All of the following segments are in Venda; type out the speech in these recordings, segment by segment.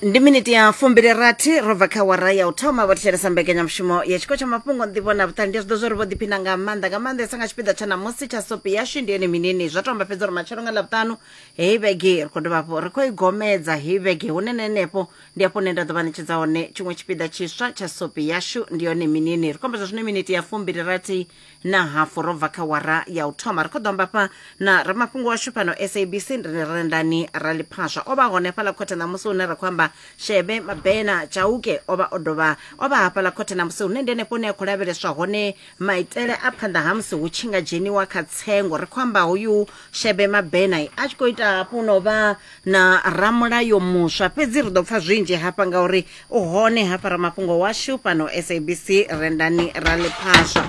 ndi miniti ya fumbili rathi ro bva kha wara ya u thoma vho thetshelesa mbekanyamushumo ya tshiko tsha mafhungo nḓivho na vhuṱali ndi a zwi ḓo zwo ri vho ḓiphina nga maanḓa nga maanḓesa nga tshipiḓa tsha namusi tsha sopi yashu ndi ene minini zwa to amba fhedza uri matshelo nga ḽavhuṱanu heyi vhege ri khou dovha hafho ri khou i gomedza heyi vhege hune na henefho ndi hafho hune nda ḓo vha ṋetshedza hone tshiṅwe tshipiḓa tshiswa tsha sopi yashu ndi yone minini ri khou amba zwa zwino miniti ya fumbili rathi na hafu ro bva kha wara ya u thoma ri khou ḓo amba fha na ramafhungo washu fhano sabc ri rendani raliphaswa o vha hone fhaḽa khothe ṋamusi hune ra khou amba shebe mabena chauke o vha o dovha o vha hafhaḽa khothe ṋamusi hune ndi henefho hune a khou lavheleswa hone maitele a phanḓa ha musi hu tshi nga dzheniwa kha tsengo ri khou amba hoyu shebe mabena a tshi khou ita hafhu no vha na ramulayo muswa fhedzi ri ḓo pfa zwinzhi hafha ngauri u hone hafha ramafhungo washu fhano sabc rendani ra ḽiphaswa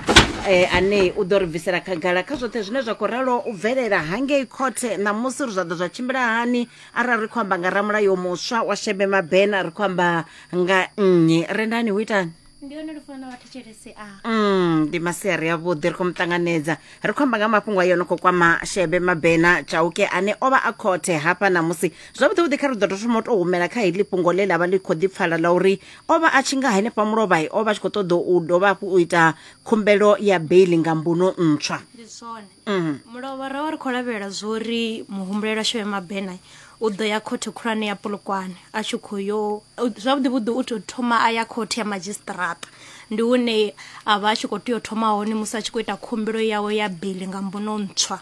eh, ane u ḓo ri bvisela khagala kha zwoṱhe zwine zwa khou ralo u bvelela hangei khothe ṋamusi uri zwa ḓo zwa tshimbila hani arali ri khou amba nga ramulayo muswa wa shebe mabena ri khou amba nga nnyi rendani hu itani ndi hone lufuno wa thetshelesi a Mm, ndi masiari avhuḓi ri khou mu ṱanganedza ri khou amba nga mafhungo ayo no khou kwama shebe mabena chauke ane o vha a khothe hafha ṋamusi zwavhuḓivhuḓi kha ri ḓo tou thoma u tou humela kha heḽi fhungo ḽe ḽa vha ḽi khou ḓipfala ḽa uri o vha a tshi nga henefha mulovhae o vha a tshi khou ṱoḓa u dovha hafhu u ita khumbelo ya beili nga mbuno ntswa ndi zwone mulovhara wa ri khou lavhelela zwori muhumbulelo ashu ya mabena u ḓo ya khothe khulwane ya polokwane a tshi khou yo zwavhuḓi vhuḓi u tou thoma a ya khothe ya madzhisiṱiraṱa ndi hune a vha a tshi khou tea u thoma hone musi a tshi khou ita khumbelo yawe ya beli nga mbono ntswa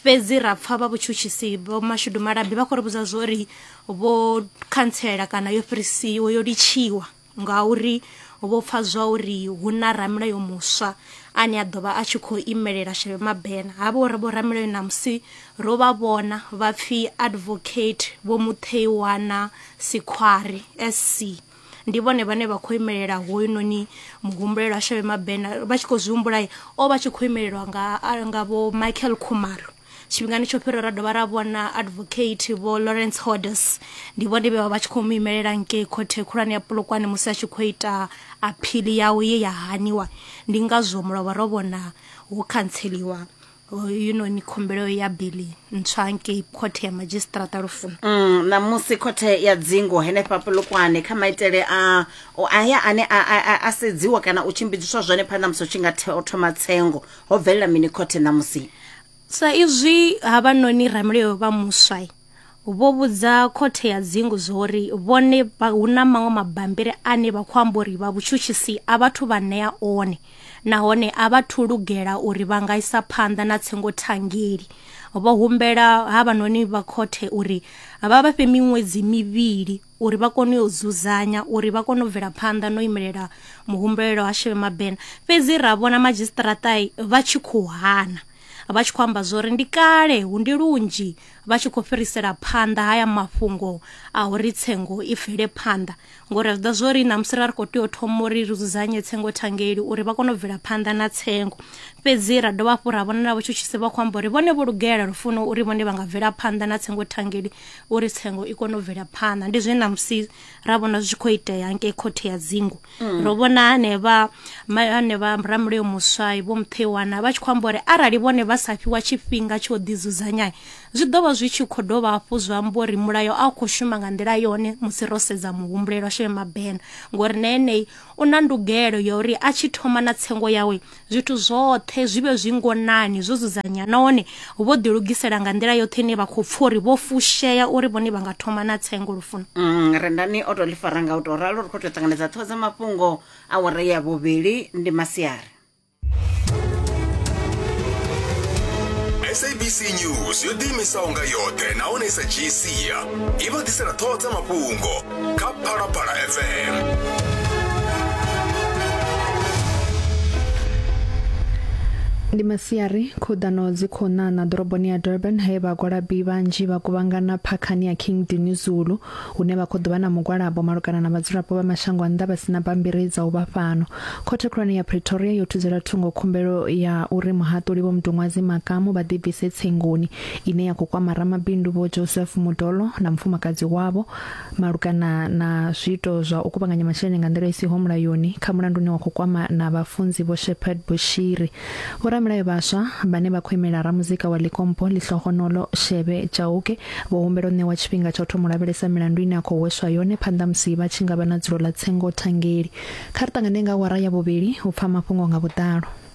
fhedzi ra pfa vha vhutshutshisi vho mashudu malabi vha khou ri vhudza zwori vho khantsela kana yo fhirisiwa yo litshiwa Ngauri vho pfa zwa uri hu na ramulayo muswa ane a ḓo vha a tshi khou imelela Shebe Mabena. Havha uri vho ramulayo ṋamusi ro vha vhona vha pfi Advocate Vho Mutheiwana Sikhwari, SC. Ndi vhone vhane vha khou imelela hoyunoni muhumbulelwa Shebe Mabena. Vha tshi khou zwi humbula o vha tshi khou imelelwa nga nga Vho Michael Khumalo. tshifhingani tsho fhiraho ra dovha ra vhona advocate vho lawrence hodes ndi vhone vhe vha vha tshi khou mu imelela ngei khothe khulwane ya polokwane musi a tshi khou ita aphili yawe ye ya haniwa ndi ngazwo mulovha ro vhona ho khantseliwa yunoni khumbelo ya bili ntswa ngei khothe ya madzhisiṱiraṱa lufuno mm, ṋamusi khothe ya dzingo henefha polokwane kha maitele a aya ane a sedziwa kana u tshimbidziswa zwone phanḓa musi u tshi nga thoma tsengo ho bvelela mini khothe ṋamusi sa izwi havhanoni ramulayo vha muswa vho vhudza khothe ya dzingu zwori vhone hu na maṅwe mabambiri ane vha khou amba uri vha vhutshutshisi a vhathu vha ṋea one nahone a vha thu lugela uri vha nga isa phanḓa na tsengo thangeli vho humbela havhanoni vha khothe uri vha vha fhe miṅwedzi mivhili uri vha kone u yo dzudzanya uri vha kone u bvela phanḓa no imelela muhumbulelo ha Shebe Mabena fhedzi ra vhona madzhisiṱaraṱa vha tshi khou hana vha tshi khou amba zwori ndi kale hu ndi lunzhi vha tshi khou fhirisela phanḓa haya mafhungo a uri tsengo i bvele phanḓa ngori a zwi ḓa zwori na musi ra ri khou tea u thoma uri ri dzudzanye tsengo thangeli uri vha kone u bvela phanḓa na tsengo fhedzi ra dovha hafhu ra vhona na vhutshutshisi vha khou amba uri vhone vho lugela lufuno uri vhone vha nga bvela phanḓa na tsengo thangeli uri tsengo i kone u bvela phanḓa ndi zwine namusi ra vhona zwi tshi khou itea ngei khothe ya dzingu mm. ro vhona hanevha hanevha ramulayo muswa vho muthewana vha tshi khou amba uri arali vhone vha sa fhiwa tshifhinga tsho ḓidzudzanya zwi ḓo vha zwi tshi khou dovha hafhu zwa amba uri mulayo a u khou shuma nga nḓila yone musi ro sedza muhumbulelo sheme mabena ngori na eneyi u na ndugelo ya uri a tshi thoma na tsengo yawe zwithu zwoṱhe zwi vhe zwi ngonani zwo dzudzanya nahone vho ḓilugisela nga nḓila yoṱhe ine vha khou pfha uri vho fushea uri vhone vha nga thoma na tsengo lufuno Mm, rendani o tou ḽi fara nga u tou ralo ri khou tou ṱanganedza ṱhoho dza mafhungo a wara ya vhuvhili ndi masiari sabc news yo ḓiimisaho nga yoṱhe nahone i sa dzhii sia i vha ḓisela ṱhoho dza mafhungo kha phalaphala fm ndi masiari khuḓano dzi khou ṋaṋa ḓoroboni ya durban he vhagwalabi vhanzhi vha kuvhangana phakhani ya king dini zulu hune vha khou ḓo vha na mugwalabo malugana na vhadzulapo vha mashango a nnḓa vha sina bammbiri dza u vha fhano khothe khulwane ya pretoria yo thudzela thungo khumbelo ya uri muhaṱuli vho mudunwadzi makamu vha ḓibvise tsengoni ine ya khou kwama ramabindu vho joseph mudolo na mufumakadzi wavho malugana na zwiito zwa u kuvhanganya masheleni nga nḓila i siho mulayoni kha mulandu une wa khou kwama na vhafunzi Vho Shepherd Bushiri. Vhoramilayo vhaswa vhane vha khou imela ramuzika wa Likompo Lihlohonolo Shebe Chauke vho humbela u ṋewa tshifhinga tsha u thoma u lavhelesa milandu ine a khou hweswa yone phanḓa musi vha tshi nga vha na dzulo ḽa tsengo thangeli. Kha ri ṱangane nga awara ya vhuvhili u pfa mafhungo nga vhuḓalo.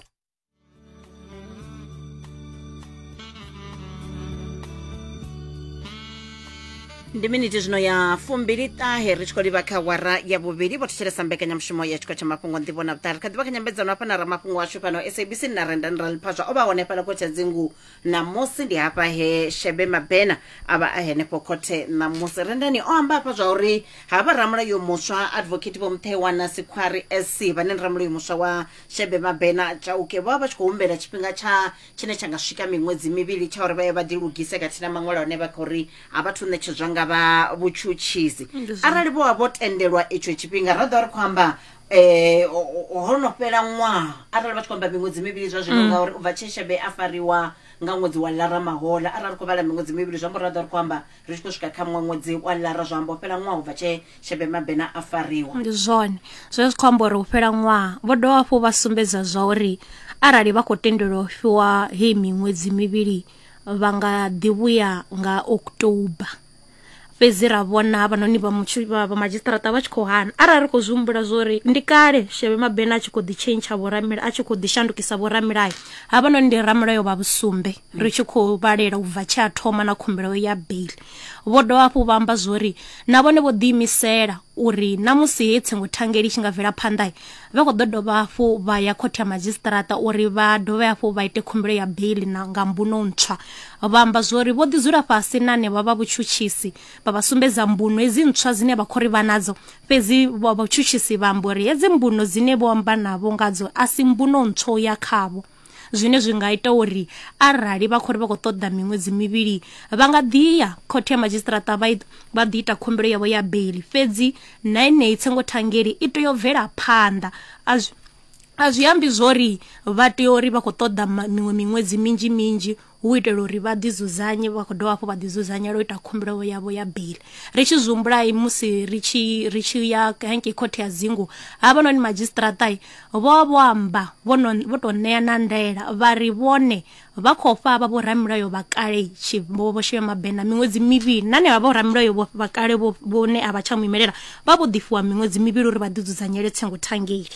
ndi miniti zwino ya fumbili ṱahe ri tshi khou livha kha wara ya vhuvhili vho thetshelesa mbekanyamushumo ya tshikho tsha mafhungo ndivho na vhuṱali kha ḓivha kha nyambedzano hafha na ramafhungo washu fhano sabc na renda nira liphazwa o vha hone fhala khothe dzingu ṋamusi ndi hafha he shebe mabena a vha a henefho khothe ṋamusi rendani o amba hafha zwa uri havha ramulayo muswa advocate vho muthewana sikhwari sc vhane ndi ramulayo muswa wa shebe mabena chauke vho vha vha tshi khou humbela tshifhinga tsha tshine tsha nga swika miṅwedzi mivhili tsha uri vha ye vha ḓilugise khathihi na maṅwalo hone vha khou ri a vha thu ṋetshedzwa nga vha vhutshutshisi arali vho vha vho tendelwa itsho tshifhinga ra ḓo ri khou amba eh ho no fhela ṅwaha arali vha tshi khou amba miṅwedzi mivhili zwa zwino ngauri u bva tshe shebe a fariwa nga ṅwedzi wa lara mahola arali ri khou vhala miṅwedzi mivhili zwi amba uri ra ḓo ri khou amba ri tshi khou swika kha muṅwe ṅwedzi wa lara zwa amba u fhela ṅwaha u bva tshee shebe mabena a fariwa ndi zwone zwe zwi khou amba uri u fhela ṅwaha vho dovha hafhu vha sumbedza zwa uri arali vha khou tendelwa u fhiwa heyi miṅwedzi mivhili vha nga ḓivhuya nga october fhedzi ra vhona havhanoni vha vha madzhisiṱaraṱa vha tshi khou hana arali ri khou zwi humbula zwo uri ndi kale sheve mabena a tshi khou ḓi tshentsha vhoramila a tshi khou ḓi shandukisa vhoramilayo havhanoni ndi ramulayo vha vhusumbe ri tshi khou vhalela u bva tshe a thoma na khumbelo ya bail vho dovha hafhu vha amba zwori na vhone vho ḓiimisela uri na musi he tsengo thangeli tshi nga bvela phanḓa vha khou ḓo dovha hafhu vha ya khothe ya madzhisiṱaraṱa uri vha dovhe hafhu vha ite khumbelo ya bail na nga mbuno ntswa vha amba zwori vho ḓi dzula fhasi na ne vha vha vhutshutshisi vha vha sumbedza mbuno hedzi ntswa dzine vha khou ri vha nadzo fhedzi vha vhutshutshisi vha amba uri hedzi mbuno dzine vho amba navho ngadzo a si mbuno ntswa ya khavho zwine zwi nga ita uri arali vha khori vha khou ṱoḓa miṅwedzi mivhili vha nga ḓi ya khothe ya madzhisiṱiraṱa vha vha ḓi ita khumbelo yavho ya beili fhedzi na enei tsengo thangeli i tea u bvela phanḓa a zwi a zwi ambi zwori vha tea uri vha khou ṱoḓa miṅwe miṅwedzi minzhi minzhi hu itela uri vha ḓi dzudzanye vha khou dovha hafhu vha ḓi dzudzanyela u ita khumbelo yavho ya bili ri tshi zwihumbulai musi ri tshi ri tshi ya hangei khothe ya dzingu havhanoni madzhisiṱiraṱai vho vho amba vho tou ṋea na ndaela vha ri vhone vha khou fha vha vhoramilayo vha kale vho shema mabena miṅwedzi mivhili na henevha vhoramilayo vha kale vhone a vha tsha mu imelela vha vho ḓifiwa miṅwedzi mivhili uri vha ḓi dzudzanyele tsengo thangeli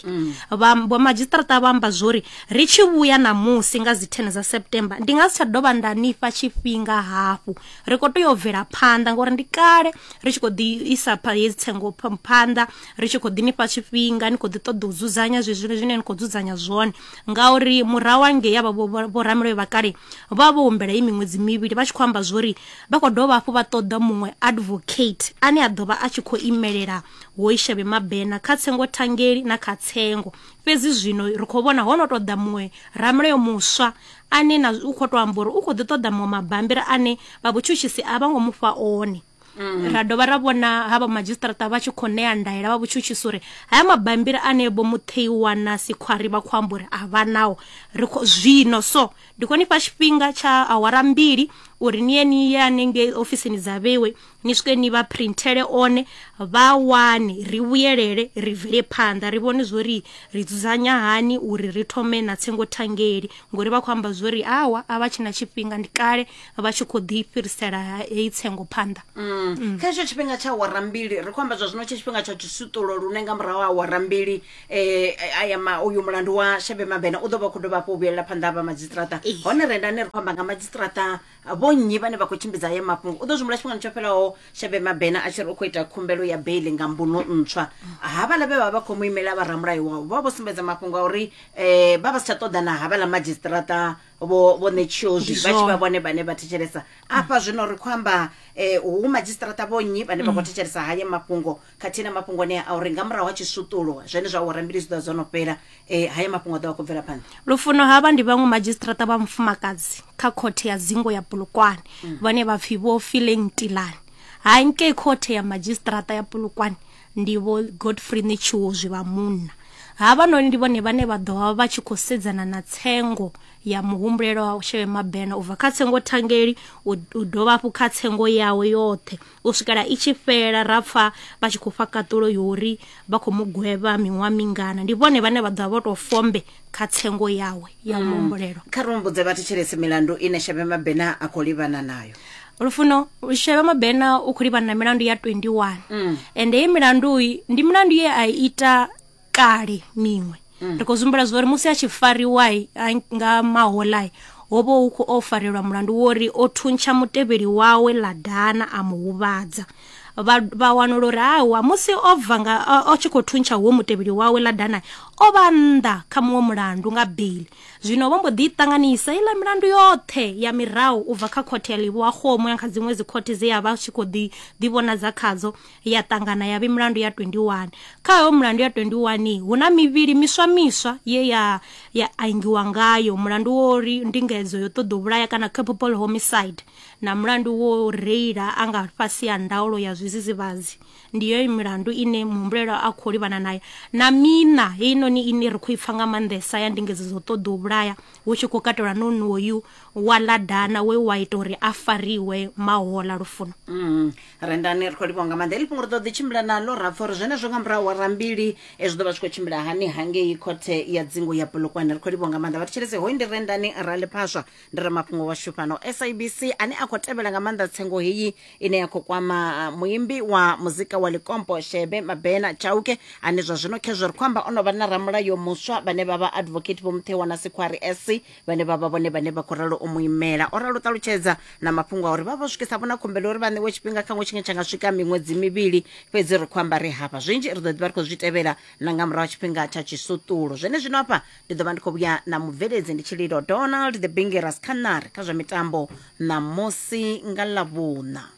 vha madzhisiṱiraṱa vha amba zwori ri tshi vhuya ṋamusi nga dzi 10 dza september ndi nga si tsha dovha nda nifha tshifhinga hafhu ri khou tea u bvela phanḓa ngauri ndi kale ri tshi khou ḓi isa hedzi tsengo phanḓa ri tshi khou ḓi nifha tshifhinga ni khou ḓi ṱoḓa u dzudzanya zwezwi zwine ni khou dzudzanya zwone ngauri murahu angei avha vhoramulayo vha kale vha vho humbela i miṅwedzi mivhili vha tshi khou amba zwori vha khou dovha hafhu vha ṱoḓa muṅwe advocate ane a ḓovha a tshi khou imelela hoishavhe mabena kha tsengo thangeli na kha tsengo Fhedzi zwino ri khou vhona ho no tou ḓa muṅwe ramulayo muswa ane na u khou tou amba uri u khou ḓi ṱoḓa muṅwe mabambiri ane vha vhutshutshisi a vha ngo mu fha one Mm. ra dovha ra vhona ha vha madzhisiṱaraṱa vha tshi khou ṋea ndaela vha vhutshutshisi uri haya mabambiri ane vho mutheiwa na sikhwari vha khou amba uri a vha nao ri zwino so ndi khou ni fha tshifhinga tsha awara mbili uri ni ye ni ye hanengei ofisini dza vhewe ni swike ni vha printhele one vha wane ri vhuyelele ri bvele phanḓa ri vhone zwori ri dzudzanya hani uri ri thome na tsengo thangeli ngori vha khou amba zwori awa a vha tshina tshifhinga ndi kale vha tshi khou ḓi fhirisela heyi tsengo phanḓa mm. kha hetsho tshifhinga tsha awara mbili ri khou amba zwa zwino tshe tshifhinga tsha tshisuṱulo lune nga murahu ha awara mbili um aya ma uyu mulandu wa shebe mabena u ḓo vha khou dovha hafhu u vhuyelela phanḓa ha vha madzistrata hone rendani ri khou amba nga madzistrata vho nnyi vhane vha khou tshimbidza haya mafhungo u ḓo zwimbula tshifhingani tsho fhelaho shabe mabena a tshi ri u khou ita khumbelo ya beili nga mbuno ntswa havhala vhe vha vha khou mu imela vharamulayo wavho vha vho sumbedza mafhungo a uri um vha vha si tsha ṱoḓa na havhala madzhisiṱiraṱa vho vho ṋetshiozwi vha tshi vha vhone vhane vha thetshelesa afha zwino ri khou amba um hu madzhisiṱiraṱa vho nnyi vhane vha khou thetshelesa haya mafhungo khathihi na mafhungo anea a uri nga murahu ha tshisuṱulo zwenezwo awara mbili zwi ḓo vha zwo no fhela eh, haya mafhungo a ḓo vha khou bvela phanḓa lufuno havha ndi vhaṅwe madzhisiṱiraṱa vha mufumakadzi kha khothe ya dzingo ya bulukwane mm. vhane vha pfi vho fileng tilani hangei khothe ya madzhisiṱiraṱa ya bulukwane ndi vho godfrey netshiwo zwi vha munna havhanoni ndi vhone vhane vha ḓo vha vha tshi khou sedzana na tsengo ya muhumbulelo wa sheve mabena u bva kha tsengo thangeli u dovha hafhu kha tsengo yawe yoṱhe u swikela i tshi fhela ra pfa vha tshi khou fha kaṱulo yori vha khou mu gwevha miṅwaha mingana ndi vhone vhane vha ḓovha vho tou fombe kha tsengo yawe ya muhumbulelo kha ri humbudze vhathetshelesi milandu ine shebe mabena a khou livhana nayo lufuno shebe mabena u khou livhana na milandu ya 21 ende ye milandu iyi ndi milandu ye a i ita kale miṅwe mm. ri khou zwimbula zwa uri musi a tshi fariwa nga maholai ho vha hu khou o farelwa mulandu wo ri o thuntsha mutevheli wawe ḽa dana a mu huvhadza vha wanula uri awa musi o bva nga o tshi khou thuntsha huo mutevheli wawe ḽa dana o vha nnḓa kha muṅwe mulandu nga beli zwino vho mbo ḓi ṱanganisa iḽa milandu yoṱhe ya mirahu u bva kha khothe ya livhuwa xomo ya kha dziṅwe dzikhothe dze ya vha tshi khou ḓi ḓivhonadza khadzo ya ṱangana ya vhi mulandu ya 21 kha hoyo mulandu ya 21 hu na mivhili miswa miswa ye ya ya angiwa ngayo mulandu wo ri ndingedzo yo ṱoḓo vhulaya kana capable homicide na mulandu wo reila a nga fhasi ya ndaulo ya zwizidzivhadzi ndi yoyo milandu ine muhumbulelo a khou livhana nayo na mina heinoni ine ri khou i pfa nga maanḓesa ya ndingedzo dzo ṱoḓa u vhulaya hu tshi khou katelwa nonoyu wa ladana we wa ita uri a fariwe mahola lufuno mm. rendani ri khou livhiwa nga maanḓa heḽi fhungo ri ḓo ḓi tshimbila naḽo ra pfha uri zwenezwo nga murahu wa rambili e zwi ḓo vha zwi khou tshimbila hani hangei khothe ya dzingu ya polokwane ri khou livhiwa nga maanḓa vha thetshelese hoyu ndi rendani ra ḽiphaswa ndi re mafhungo washu fhano sabc ane a khou tevhela nga maanḓa tsengo heyi ine ya khou kwama ah, muimbi wa muzika wa likompo shebe mabena chauke ane zwa zwino khezwo ri khou amba o no vha na ramulayo muswa vhane vha vha advocate vho muthewana sikhwari sc vhane vha vha vhone vhane vha khou ralo u mu imela o ralo ṱalutshedza na mafhungo a uri vha vho swikisa vhona khumbelo uri vha ṋewe tshifhinga kha ṅwe tshine tsha nga swika miṅwedzi mivhili fhedzi ri khou amba ri hafha zwinzhi ri ḓo ḓivha ri khou zwi tevhela na nga murahu ha tshifhinga tsha tshisutulu zwene zwino hafha ndi ḓo vha ndi khou vhuya na mubveledzi ndi tshililo donald the bingeras khaṋari kha zwa mitambo ṋamusi nga ḽavhuṋa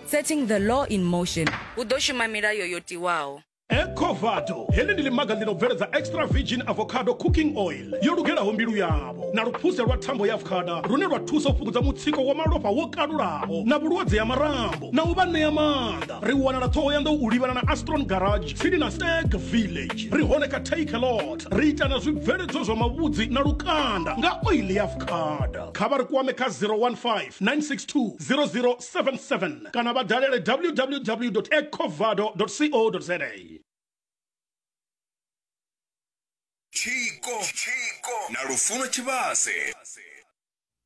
Setting the law in motion. Hu ḓo shuma milayo yo tiwaho. ecovado heḽi ndi ḽimaga ḽi no bveledza extra virgin avocado cooking oil yo lugelaho mbilu yavho na luphuse lwa thambo ya avocada lune lwa thusa u fhungudza mutsiko wa malofha wo kalulaho na vhulwadze ya marambo na u vha ṋea maanḓa ri wanala ṱhohoyanḓou u livhana na astron garage tsini na stag village ri hone kha take a lot ri ita na zwibveledzwa zwa mavhudzi na lukanda nga oil ya avocada kha vha ri kwame kha 015 962 00 077 kana vha dalele www ecovado co za tshiko na lufuno tshivhase